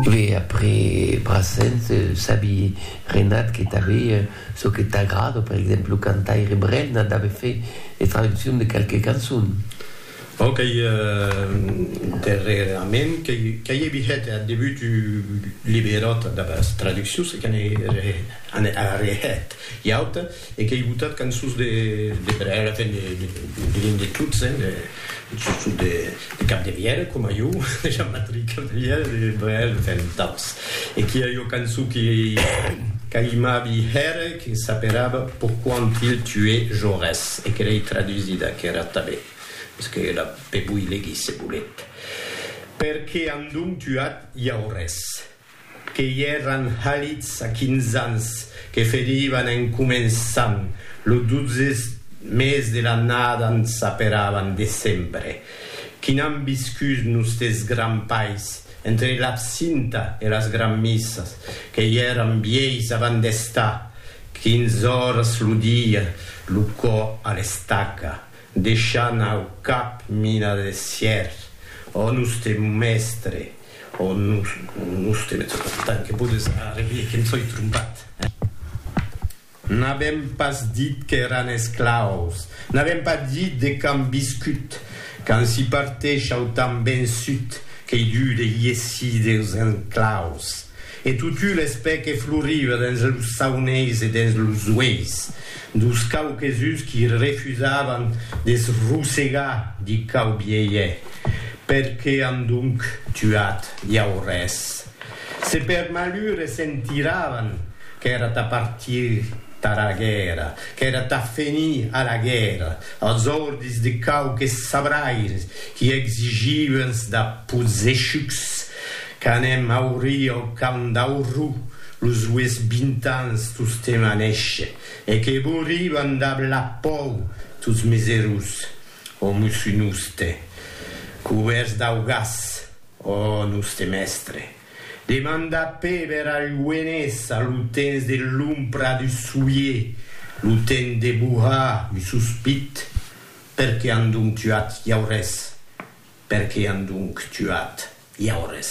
Ve après Brassens, sabi Renat que tanbe çò que t'agrada, per exemple lo cantaire Brel n'a tanbe fait de traduccion de qualques cançons. Bon qu'ei darrerament qu'ei e bihet ath debut du liberòta dera traduccion se qu'an e arrehet, i auta. E qu'ei botat cançons de per èra, ben diguem de tots, sustot de Capdevièlh, coma jo, de Jean-Patric Capdevièlh, de Brel, ben d'autres. E qu'i a ua cançon que qu'aimavi hèr, que s'aperava Pourquoi ont-il tué Jaurès? e que l'ei tradusida aquera tanben, mès que la pe voi legir se voletz. Per qué an donc tuat Jaurès? que i èran halits a quinze ans, que ferivan en començant, lo dotze mes de l'annada n' s'aperavan decembre, qui n'an viscut nostes grands pais, entre l'absinta e las granmissas, que i èran vièis avant d'estar, quinze oras lo dia, lo cò a l'estaca, deishant au cap mina de sièr, ò noste mestre, Ò nos, nos te met sota tant que podes arrevier que em soi trompat, eh? N'avèm pas dit qu'èran esclaus, n'avèm pas dit de qu'an viscut, qu'an si parteishau tan ben sut qu'ei dut de iessir deus enclaus. E totu l'espè que floriva dens los sauneis e dens los ueis dos quauquesuns qui refusavan de se rosegar di quau bielhe, per que an donc tuat Jaurès? Se per malur e se'n tiravan qu'èra tà partir tara guèrra, qu'èra tà fenir a la guèrra, als ordis de quauques sabraires qui exigivans da pozechucs Qu'anem aurir au camp d'Aurrú los ues vint ans tostemp a néisher, e que bourivan dab la pòu tots mes erós, ò mosso noste, cubèrts dau gas, ò noste mèstre, demanda Péber a Lluenés a lo temps de l'ompra du soulier, lo temps de bohar un sospit. Per qué an donc tuat Jaurès? Per qué an donc tuat Jaurès?